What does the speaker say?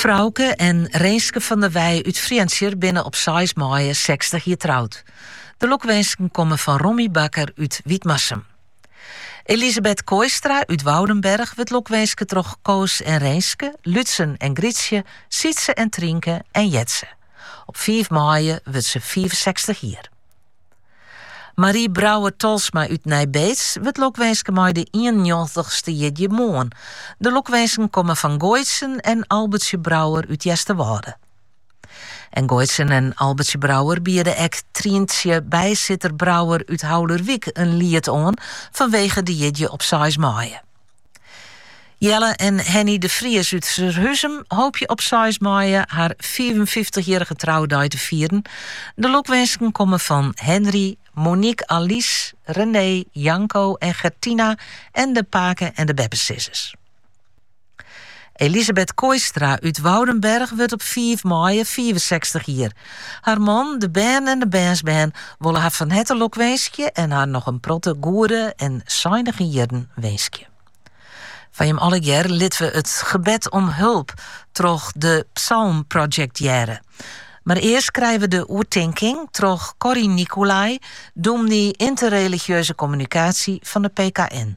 Froukje en Renske van der Wij út Frjentsjer binne op seis maaie sechstich jier troud. De lokwinsken komme fan Rommie Bakker út Wytmarsum. Elisabeth Kooistra út Woudenberg wurdt lokwinske troch Koos en Renske, Lútsen en Grytsje, Sietse en Trynke en Jetze. Op fiif maaie wurdt se fiifensechstich jier. Marie Brouwer Tolsma út Nij Beets wurdt lokwinske mei de 91ste jierdei moarn. De lokwinsken komme fan Goitsen en Albertsje Brouwer út Easterwâlde. En Goitsen en Albertsje Brouwer biede ek Tryntsje Bijsitter Brouwer út Haulerwyk in liet oan fanwege de jierdei op seis maaie. Jelle en Henny de Vries út Surhuzum hoopje op 6 maaie har 55-jierrige troudei te fieren. De lokwinsken komme fan Henry, Monique Alice, René, Janko en Gertina en de pake en de beppesizzers. Elisabeth Kooistra út Woudenberg wurdt op fiif maaie fiifensechstich jier. Har man, de bern en de bernsbern wolle har fan herte lokwinskje en har noch in protte goede en seinige jierren winskje. Foar jim allegear litte we it gebed om hulp troch it Psalmproject hearre. Mar earst krije we de oertinking troch Corrie Nicolai, dûmny Ynterreligieuze Kommunikaasje fan de PKN.